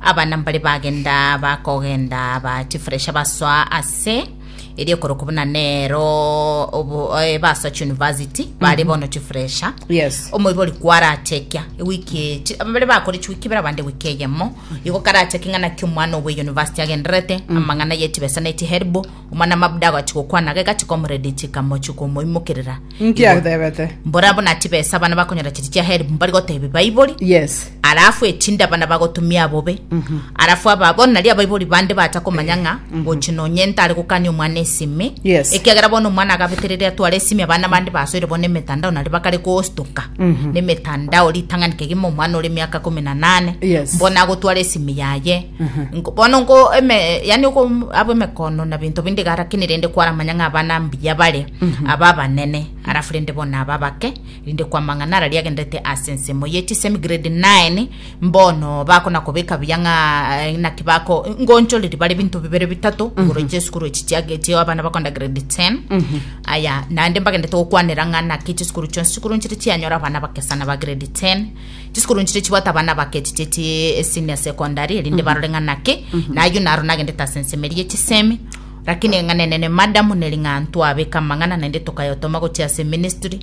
Abana mbare bagenda bakogenda aba chifuresha basoa ase erio korokwa buna nero obo- eh, basoa chiuniversity bare bono chifuresha Yes. omoibori kwarachekia ewiki chi- ababere bakore chiwiki ibere abande ewiki eyemo igo karachekia ng'a naki omwana owe university agendererete amang'ana ye chibesa ne chiherbo Omwana mabuda agachi gokwana age gachi komoredi chikamochi komoimokerera. Inki atebete? Mbora buna tibesa bana bakonyora chiri chia help mbari gotebi baibori. Yes. Alafu etinda bana bagotumia abobe. Mhm. Alafu aba bono nari abaibori bande bata komanya nga mhm. gochi nonye ntare gokani omwana esimi. Yes. Ekiagera bono omwana agabeterere atware esimi abana bande basoire bono emetandao nari bakare gostuka. Mhm. Nemetandao ritang'ani kegima omwana ore miaka kumi na nane. Yes. Mbona agotwara esimi yaye. Nko- bono nko eme yani uko abo emekono na binto binde garakini rende kwaramanya ng'a abana mbuya bare aba abanene arafu rende bona aba bake rinde kwa mang'ana ara riagenderete ase ensemo ye chisemi grade 9 mbono bakona kobeka buya ng'a eh, naki bako ngonchoriri bare binto bibere bitato igoro chesukuru echi chiage chio abana bakonda grade 10 aya naende mbagendete gokwanera ng'a naki chisukuru chionsi chikuru nchiri chianyora abana bakesana ba grade 10 Chisukuru nchiria chibwate abana bake chichieti senior secondary erinde barore ng'a naki nayo naro nagendete ase ensemo eria chisemi lakini ng'a nenene madam neri ng'a ntwabeka amang'ana naende tokayotoma gochia ase ministry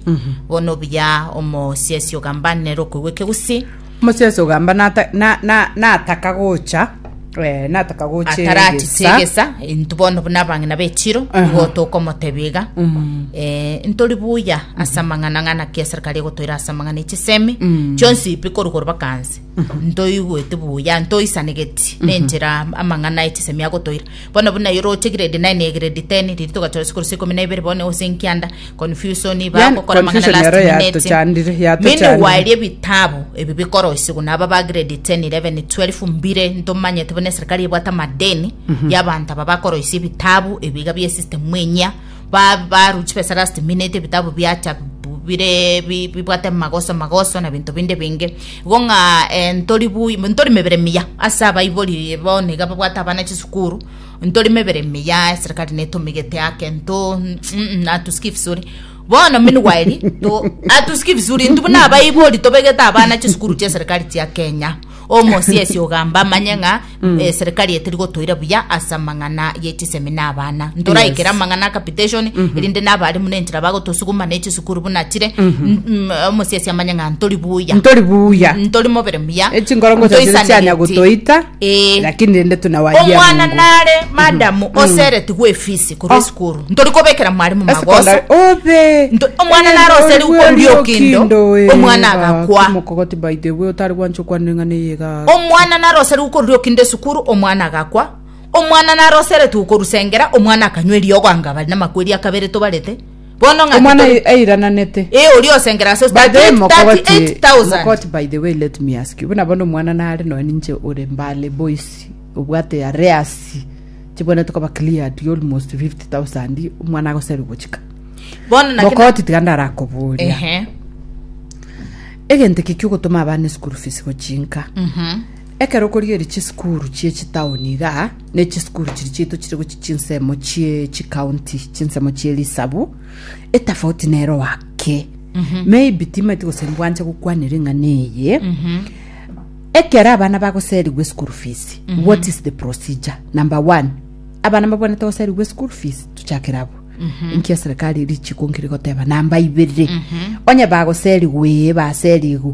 bono obuya omosiasi ogamba nere okoigwa ekegusii Moses ogamba nata- na- na- nataka gocha Eh, nataka goche atarachite egesa. egesa intu bono buna abang'ina bechiro Aha. igo tokomotebia iga Mm. Eh, ntori buya ase amang'ana ng'ana ki eserikari egotoira ase amang'ana echisemi Mm. chionsi ipi koru koru bakanse ntoigweti buya ntoisanegeti nenchera amang'ana echisemi agotoira bono buna yoroche grade 9 ya grade 10 riri togachora sikuru sikumi na ibere bono ose nkianda Confusion Yani, bagokora amang'ana confusion last ero minute. yatochandire, Mimi yatochandire. nigwaeria ebitabu ebi bikoroisigwa naba ba grade 10 11 12 mbire ntomanyete buna eserikali ebwate amadeni y'abanto aba bakoroisia ebitabu ebiga bie system enyia ba- baru chibesa last minute ebitabu biacha bu- bire bi- bibwate magoso magoso na binto binde binge igo ng'a eh, ntori bu- ntori mebere miya ase abaibori bono iga babwate abana chisukuru Ntori mebere miya, eserekari netomigete ake nto mm, atusiki vizuri bono mini gwaeri to atusiki vizuri ntu buna abaibori tobegete abana chisukuru chia serikali chia Kenya omosiesi ogamba amanye ng'a eh, serikali etiri gotoira buya ase amang'ana ye chisemi na abana ntoraikera Yes. amang'ana a capitation erinde n'abarimu nenchera bagotosuguma ne chisukuru buna chire Mm, mm, omosiesi amanye ng'a ntori buya ntori buya ntori mobere muya echingoro ngocha chire chianya gotoita Ee. lakini rende tunawaria omwana Mungu. nare madamu oseretigwe efisi korwa esukuru ntori kobekera mwarimu magoso Esecondary. Obe. Nto- omwana Ere naro oseri ndoigwe okoria rio okindo, kindo, eh, omwana ba, agakwa. kimokogoti by the way otari gwancha okwana eng'ana eye iga. omwana nare oseri gokorwa okinde esukuru omwana agakwa omwana nare oseretigwe korusengera omwana akanywa eriogo anga bari namakweri akabere tobarete bono ng'aki Omwana tori- ai- airananete. Eh, oria osengera ase By the way, 38 Mokogoti, 38,000. Mokogoti, by the way, let me ask you. Buna bono omwana nare noe ninche ore mbale boys. Obwate arrears. Chibwanete koba cleared almost 50,000. Omwana agoserwa gochika. bono naki- Mokogoti tiga ndarakoboria. Ehe, Egento eki kiogotoma abana school fees gochinka. mhm. Ekero okorigeria chisukuru chie chitaoni iga, ne chisukuru chiri chiaito chire gochia chinsemo chie chikaunti chinsemo chie risabu etafauti nero wake maybe timaeti gose mbwanche gokwanera eng'ana eye ekero abana bagoserigwa eschool fees what is the procedure number one abana babwanete goserigwa eschool fees tuchakere abo nkia serikali eri chiko nkiri goteba namba ibere onye bagoserigwa ee baserigwa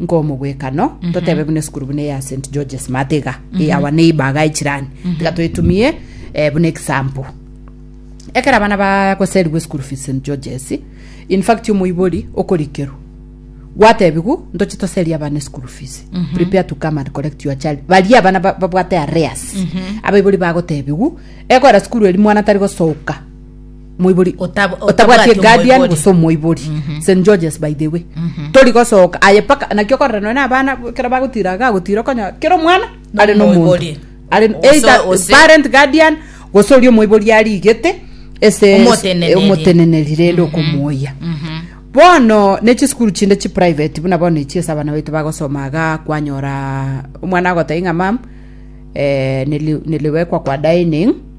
Nkomogwekano, totebe buna esukuru buna eya St. George's Math iga, eh, our neighbor iga echirani, tiga toetumie eh, buna example. Ekero abana bagoserigwa esukuru fees St. George's, in fact omoibori okorikerwa gwatebigu ntoche toserie abana esukuru fees prepare to come and collect your child baria abana ba- babwate areas abaibori bagotebigu ekwera sukuru eri mwana tari gosoka Omoibori otabwati eguardian gose omoibori St George's by the way tori gosoka aye paka naki okorora nonya na abana ekero bagotira iga agotira okonyora kera omwana are na omonto Omoibori. are Gose- either gose- parent guardian gose oria omoibori arigete ase Omoteneneri. omoteneneri rende okomoyia bono ne chisukuru chinde chi private buna bono echi ase abana baito bagosoma iga kwanyora omwana agoteba ng'a mam eh, nili- niliwekwa kwa dining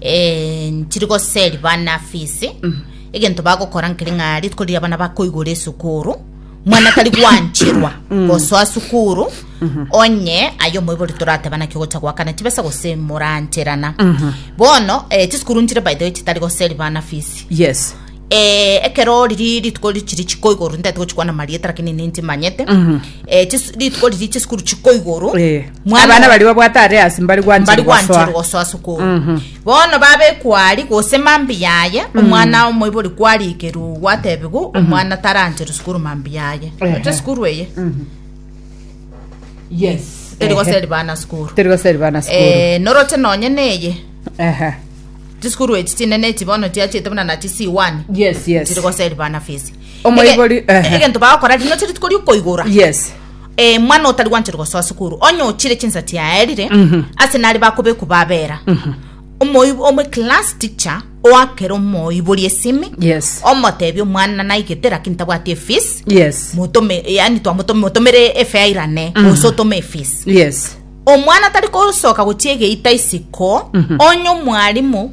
eh, nchiri goseri bana fisi egento bagokora nkeri ng'a rituko riria bana bakoigora esukuru mwana tari gwanchirwa gosoa sukuru onye aye omoibori torateba naki ogocha goakana chibesa gose morancherana bono eh, chisukuru nchire by the way chitari goseri bana fisi yes Ee, ekero riri rituko ri- chiri chiko igoro ntete gochikwana marieta lakini ninche manyete Eh, chis- rituko riri chisukuru chiko igoro Eh, Mwana abana wa- bari babwate are asi mbari mbari gwanchiri gwanchiri gosoa gosoa sukuru bono babekwari gose mambi yaye omwana omoibori kwarikerwa gwatebigu omwana taranchiri sukuru mambi yaye Ehe. oche sukuru eye yes eri gose eri bana sukuru teri gose eri bana sukuru Eh, noroche nonye neye Ehe. Chisukuru echi chinene echi bono chiachete buna nachi C1 yes yes chiri goseri bana fees Omoibori, Ege- ehe. egento bagokora rino chiri tikori okoigora yes Eh, mwana otari gwanchire gosoa sukuru onye ochire chinsa chiaerire Mhm. ase nari bakobeku babera Omoib- omo class teacher oakere omoibori esimi yes omotebi omwana naigete lakini tabwati efees yes mutome yani twamutomere efeairane Mhm. gose otome efees yes Omwana tari kosoka gochia egeita isiko, onye omwalimu,